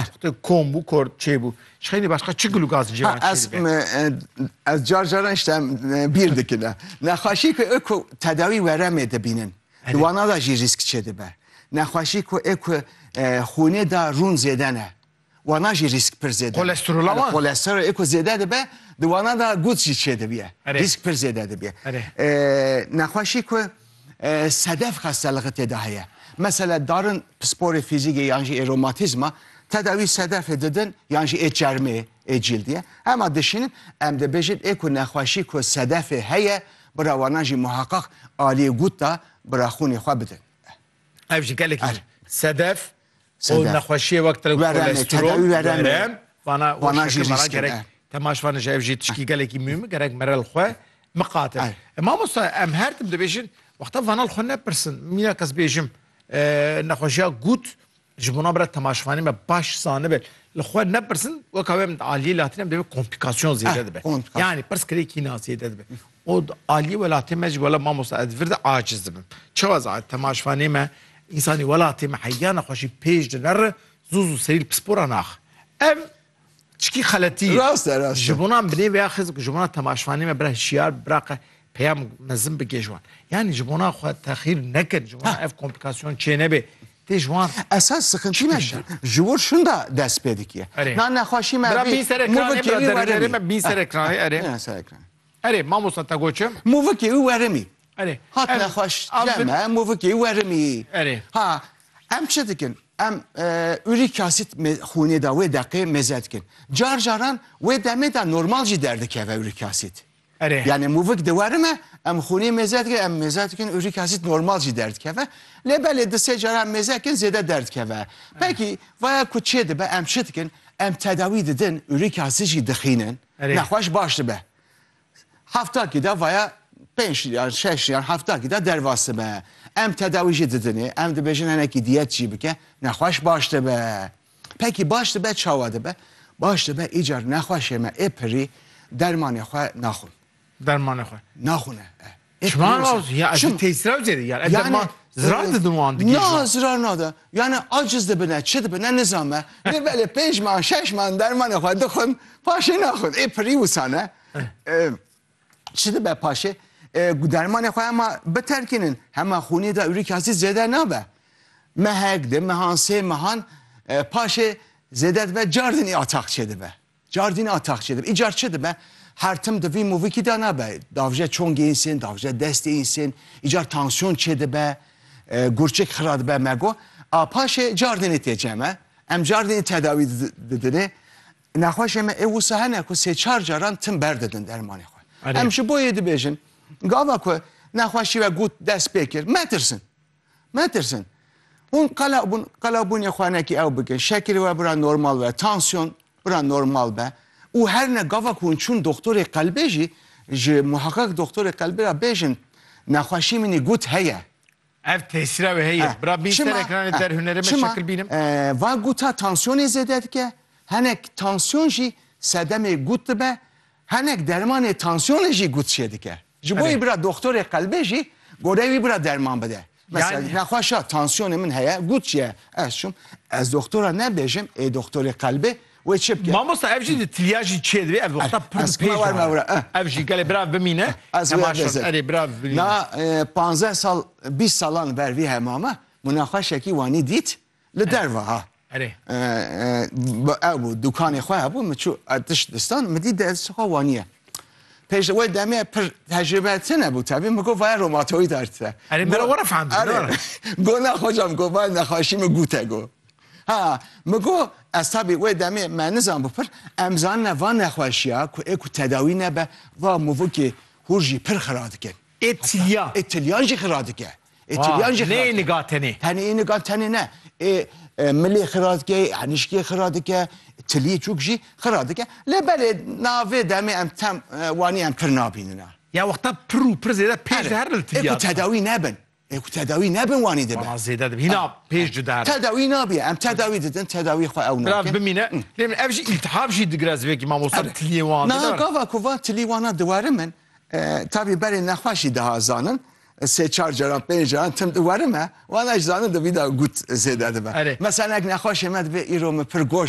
Xte kom bû kor çê bû. Ji xeynî başqa çi gul û gaz cî Ha, ez me, e, ez car caran işte em, e, bîr dikin e. Nexweşî ku ê ku tedawî weremê dibînin. Di wana da jî rîsk çêdibe. Nexweşî ku ê ku e, xûnê da rûn zêde ne. Wana jî rîsk pir zêde. Kolesterola wan? Kolesterol ê ku zêde dibe, di wana da gut jî çêdibiye. Erê. Rîsk pir zêde dibiye. Erê. E, nexweşî ku sedef xestelixê tê de heye. Mesela darin pisporê fîzîgê yan jî ê romatîzma tedawî sedefê didin yan jî ê çermê, ê cîldiyê. Hema dişînin em dibêjin ê ku nexweşî ku sedefê heye bira wanan jî muheqeq aliyê gut de bira xûnê xwe bidin. Ev jî gelekî sedef O Sedef. nexweşiyê wek tira Vereme, kolesterol, tedavî vereme. verem, vana o Vana jî şekil vana rîske, gerek e. temaş vana ji ev jî tişkî gelekî muhîm e, gerek merel xwe miqatin. Ay. E mamosta em her tim dibêjin wexta vana li xwe nepirsin. Mîna kes bêjim e, nexweşiya gut ji bona bira temaşvanê me baş zanibe. Li xwe nepirsin weka wê em aliyê latîn em divê komplikasyon zêde dibe. komplikasyon. Yani pirs kirê kîna zêde dibe. Od aliyê welatê me jî wela mamosta ez vir de aciz dibim. Çawa za ez temaşvanê me însanî welatê me heyyana xwe jî pêş dine re zû zû serî li pisporan ax. Ev çikî xeletî ye. Rast e, rast e. Ji bona binê vê ya xêz ku ji bona temaşvanê me bira hişyar biraqe peyam mezin bigihîj wan. Yanî ji bona xwe texîr nekin, ji bona ev komplikasyon çênebê. Tê ji wan Esas sıkıntı ne? Çıkışa. Jivur şunda dest pê dikiye. Erê. Na nexweşî me Bira bî ser ekranê, bira derê derê me bî ser ekranê, erê. Bî ser ekranê. Erê mamosta te goçim. Mûvikê wî werimî. Erê. Hat ne xweş deme mûvikê wî werimî. Erê. Ha em çi dikin? Em uric acid xûnê de wê deqê mêze dikin. Car caran wê demê de normal jî derdikeve uric acid. Erê. Yani mûvik diwerime em xûnê mêze dikin em mêze dikin uric acid normal jî derdikeve. Lê belê di sê caran mêze kin zêde derdikeve. Pekî vaya ku çêdibe em çi dikin? Em tedawî didin uric acid jî dixînin. Nexweş baş dibe. Hefta kî de vaya pênc yan şeş yan hefta kî de dervas dibe. Em tedawî jî didinê. Em dibêjin henekî diyet jî bike. Nexweş baş dibe. Pekî baş dibe çawa dibe? Baş dibe îcar nexweşê me ê pirî dermanê xwe naxwin. Dermanê xwe. Naxwine. Çima razî ya ez tê îsrar cêrî ya ez ma zirar didin wan digî na zirar nada yani aciz dibine çi dibine nizame nê belê pênc man şeş man dermanê xwe dixwin paşê naxwin ê pirî wisa ne çi dibe paşê dermanê xwe hema biterkînin hema xûnê de urîk asîd zêde nabe mehek di mehan sê mehan paşê zêde dibe cardinî ataq çê dibe Cardîn a taxçê dibe. Îcar çi dibe? Her tim di vî movîkî de nabe. Davje çongê însên, davje destê însên, îcar tansiyon çê dibe, gurçik xira dibe me got. A paşê cardînê tê çê me. Em cardînê tedawî didinê. Nexweşê me ê wisa hene ku sê çar caran tim berdidin dermanê xwe. Em ji bo yê dibêjin. Gava ku nexweşî ve gut dest pê kir, metirsin. Metirsin. Hûn qala bûn, qala bûnê xwe nekî ew bikin. Şekirê we bira normal be, tansiyon bira normal be. Û her ne gavak hûn çûn doxtorê qelbê jî ji muheqeq doxtorê qelbê re bêjin nexweşî min ê gut heye. Ev tesîra wê heye. Eh, Bira bîn ser çima, ekranê eh, der hunerê me çima, şekil bînim. eh, va guta tansiyonê zêde dike, henek tansiyon jî sedemê gut dibe, henek dermanê tansiyonê jî gut çêdike. Ji bo wî bira doxtorê qelbê jî gore wî bira derman bide. Mesela Yani- nexweşa tansiyonê min heye, gut jî ye. Ez çûm, ez doxtora nebêjim, ê doxtorê qelbê wê çi bike? Mamosta ev jî di tiliya jî çê divê ev wexta pir Ez bi pêş kima war me were, dihate. eh. Ev jî gelê birav bimîne. Ez Hema wê şart bezek. erê birav bilîne. Na e, 15 sal, 20 salan ver vî hemama, mûnaxweşekî wanî dît, Li derve ha. Erê. Ew bû dûkanê xwe hebû min çû tişt distan min dît ez xwe waniye. Pêş wê demê pir tecrübe tine bû tevî min got vaya romatoîd artire. Erê min were fehm Got na xocam got vaya nexweşî min gûte got. Ha min got ez tabî wê demê me nizanbû pir em zanine van nexweşiya ku ê ku tedawî nebe va movokê hûr jî pir xira dikin. Ê tilya. Ê tilya jî xira dike. Ê tilya jî xira dike. Neyê niga tenê. Tenê ê niga tenê ne. Ê milê xira dike, ê enişkê xira dike, tiliyê çûk jî xira dike. Lê belê na vê demê em tem wanî em pir nabînin a. Ya wexta pir û pir zêde pêş dihere li tilya. Ê ku tedawî nebin. Ê ku tedawî nebin wanî dibe. Wana zêde dibe. Hîna pêş di dihere. Tedawî nabiye. Em tedawî didin, tedawî xwe ew nakin. Bila bimîne. Lê min ev jî îltihab jî digire zivêkî mamosta tiliyê wan. Na gava ku va tilî wana diwerimin. Tavî berê nexweş jî diha zanin. Sê çar caran pênc caran tim diwerime. Wan ez zanin di vî de gut zêde dibe. Mesela nek nexweşê me dibe îro min pir goş